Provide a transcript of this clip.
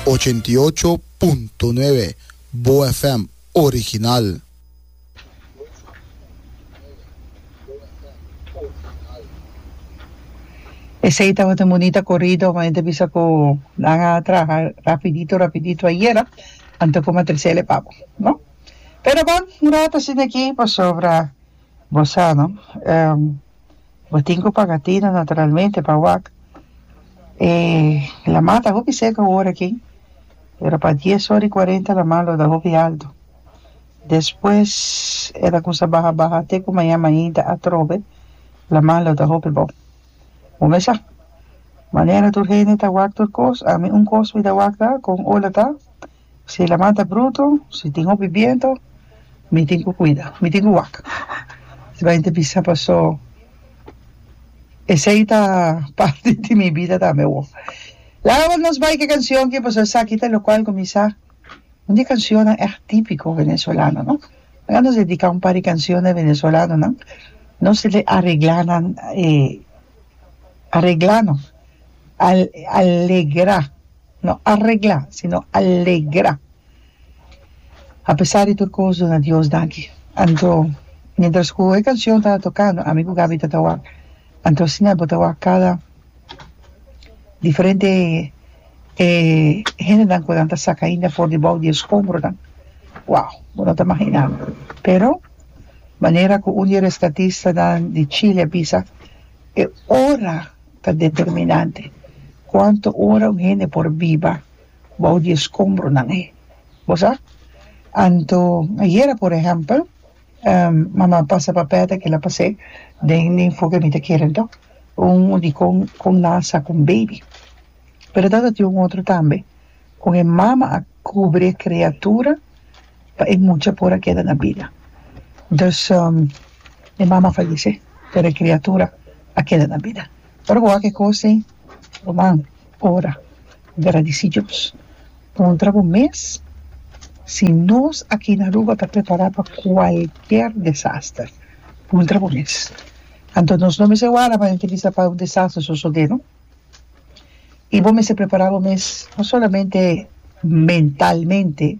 Ochenta i ocho punto nuebe Boa FM original. Esey tabata un bonita corrido cuando e ta bisa cu nan a traha rapidito rapidito ayera anto como a trece le papo no pero bon un rato asina aki pasobra bo sa no. Bo tin cu paga tino naturalmente pa wak e lama ta hopi seca ora aki pero pa dies ora y cuarenta lama lo ta hopi alto despues e ta cuminsa baha baha te cu mañana ainda atrobe lama lo ta hopi bo bo me sa manera tur hende ta wak tur cos ami un cos mi ta wak ta con ola ta Si la man ta bruto, si tin hopi biento, mi tin cu cuida, mi tin cu wak. Esta hende bisa paso esey ta parti di mi bida tambe awor. Laga awor nos bai cu e cancion cu pasobra esaki ta locual cu mi sa un di e cancionnan echt tipico venezolano, no? Laga nos dedica un par di cancionnan venezolanonan, nos ta di aregla nan e, aregla no, al, alegra. no arregla sino alegra apesar di tur cos duna Dios daki anto mientras cu e cancion ta tocando ami cu Gaby ta ta wak anto asina bo ta wak cada diferente eh hendenan cu nan ta saca ainda for debou di e scombronan wao bo no ta imagina pero manera cu un di e rescatistanan di Chile a bisa e ora ta determinante. Cuanto ora un hende por biba bou di e scombronan ei? Bo sa? Anto, ayera por ehempel, mama pasa papel taki la pas'é den den foke mi ta kere anto un dicon con nan a sa cu un baby. Pero tabatin un otro tambe cu e mama a cubri e criatura. pa e mucha por a keda na bida. Dus e mama fayesé, pero e kriatura a keda na bida. Ora bo haga e kos ei, ruman, ora, gradisí Dios. Puntra bo mes si nos aki na Aruba ta prepará pa kualker desaster. Puntra bo mes. Anto nos no mester wara pa henter bisa pa un desaster sosodé, no. I bo mester prepará bo mes, no solamente mentalmente,